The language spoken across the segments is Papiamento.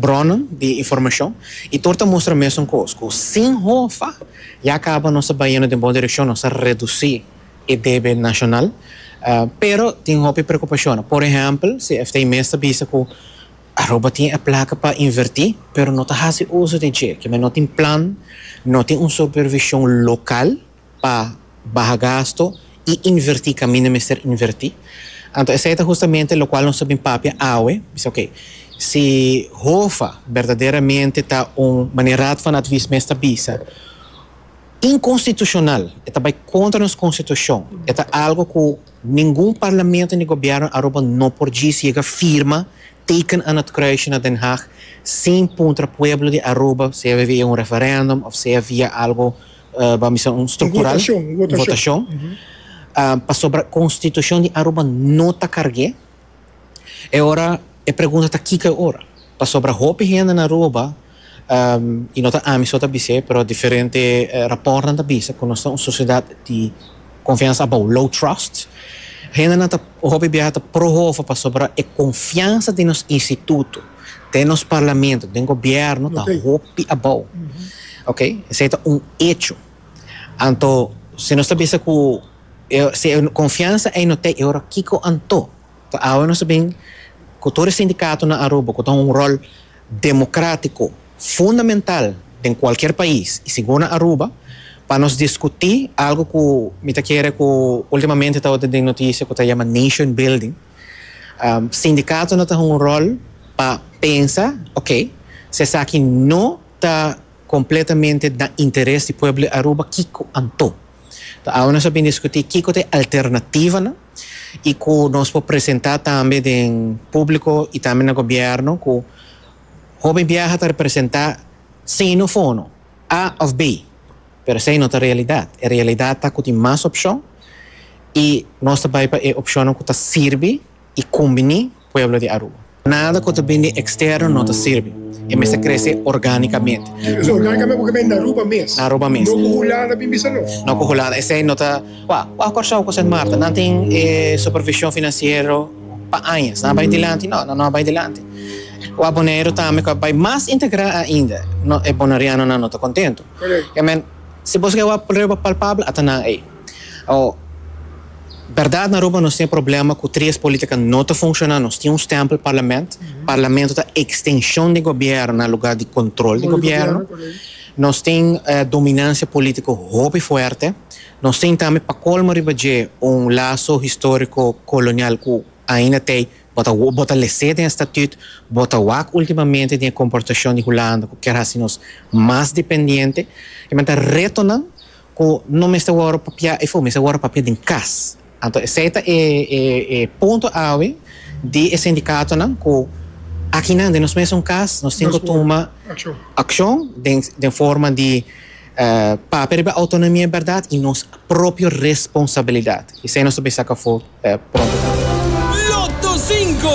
bronnen di informashon i tur ta mustra mesun kos, ku sin hofa ya kaba nos ta bai yendo den bon direkshon, nos ta redusí e debe nashonal. Pero tin hopi preokupashonnan. Por ehèmpel, CFT mes ta bisa ku Aruba tin e plaka pa invertí, pero no ta hasi uso di dje. Ke men no tin plan, no tin un supervishon lokal. pa baha gasto y inverti caminda mester inverti. Anto esey ta justamente locual nos ta bin papia awe. Mi sey ok, si Hofa berdaderamente ta un, manera Raad van Advies mes ta bisa, inconstitucional, e ta bay contra nos constitucion, e ta algo cu ningun parlamento ni gobierno Aruba no por djis yega firma, teken aan het kruisje na Den Haag, sin puntra pueblo di Aruba, sea via un referendum of sea via algo Bo a bisa un structural. Un votacion. Un votacion. Pasobra constitucion di Aruba no ta carge. E ora e pregunta ta kico e ora? Pasobra hopi hende na Aruba, y no ta ami so ta bis'e, pero diferente rapportnan ta bisa cu nos ta un sociedad di. Konfiansa abou, low trust. Hendenan ta hopi biaha ta pro hovo pasobra e konfiansa den nos instituto, den nos parlamento, den gobièrnu ta hopi abou. Oke, esei ta un echo. Anto si nos ta bisa ku e si e konfiansa ei no ta ei e ora kiko anto? Ta awe nos a bin ku tur e sindikatonan Aruba ku ta un ròl democratico fundamental den cualkier pais y si go na Aruba pa nos discuti algo cu mi ta kere cu ultimamente tabata den noticia cu ta yama nation building sindicatonan ta hunga un rol pa pensa ok si esaki no ta completamente na interes di pueblo di Aruba kico anto. Ta awe nos a bin diskutí kiko ta e alternativanan i ku nos por presentá tambe den públiko i tambe na gobièrnu ku Hopi Biaha ta representá sino fono, A òf B. Pero esei no ta e realidat. E realidat ta ku tin mas opshon i nos ta bai pa e opshonnan ku ta sirbi i kumbiní. pueblo di Aruba. Nada cu ta bini externo no ta sirbi. E mester crece organicamente. Oca organicamente cu caminda na Aruba mes. Na Aruba mes. No cu Hulanda bin bisa no. No cu Hulanda. Esey no ta. Cua? Cua Corsow cu Sint Maarten? Nan tin e supervision financiero pa añas. Nan a bay dilanti? No, nan no a bay dilanti. Cua Bonaire tambe cu a bay mas integra ainda. No, e Bonarianonan no ta contento. Correct. Emen, si bo esque a wak prueba palpabel, a ta nan ey. Awor, berdad na Aruba nos tin e problema cu tres politica no ta funciona, nos tin un stempel parlament, parlamento ta extension di gobierno na lugar di control di gobierno, nos tin dominancia politico hopi fuerte, nos tin tambe pa colmo riba dje un laso historico colonial cu ainda tey bo ta bo ta lese den e statut, bo ta wak ultimamente den e comportacion di Hulanda cu kier haci nos mas dependiente, kimente retonan ku no mester wòrdu papiá i fu mester wòrdu papiá den kas. Anto esei ta e e punto awe di e sindikatonan ku akinan den nos mesun kas nos tin ku tuma akshon den den forma di papia riba outonomia bèrdat i nos propio responsabilidat i esei nos ta bin saka for. e pronto ta renta. Lotto Cinco!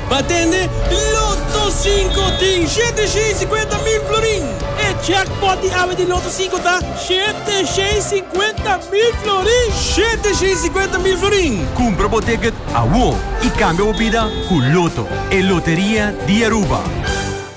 Bo a tende, Lotto Cinco tin shete shei cincuenta mil florin! E jackpot di awe di Lotto Cinco ta shete shei cincuenta mil florin! Shete shei cincuenta mil florin! Cumpra bo ticket awo y cambia bo bida cu Lotto, e loteria di Aruba!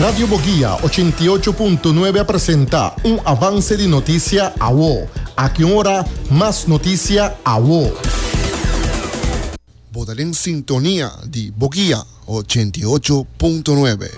Radio Boguia ochenta i ocho punto nuebe a presenta un avance di notisia awo. Aki un ora mas notisia awo. Bo ta den sintonia di Boguia ochenta i ocho punto nuebe.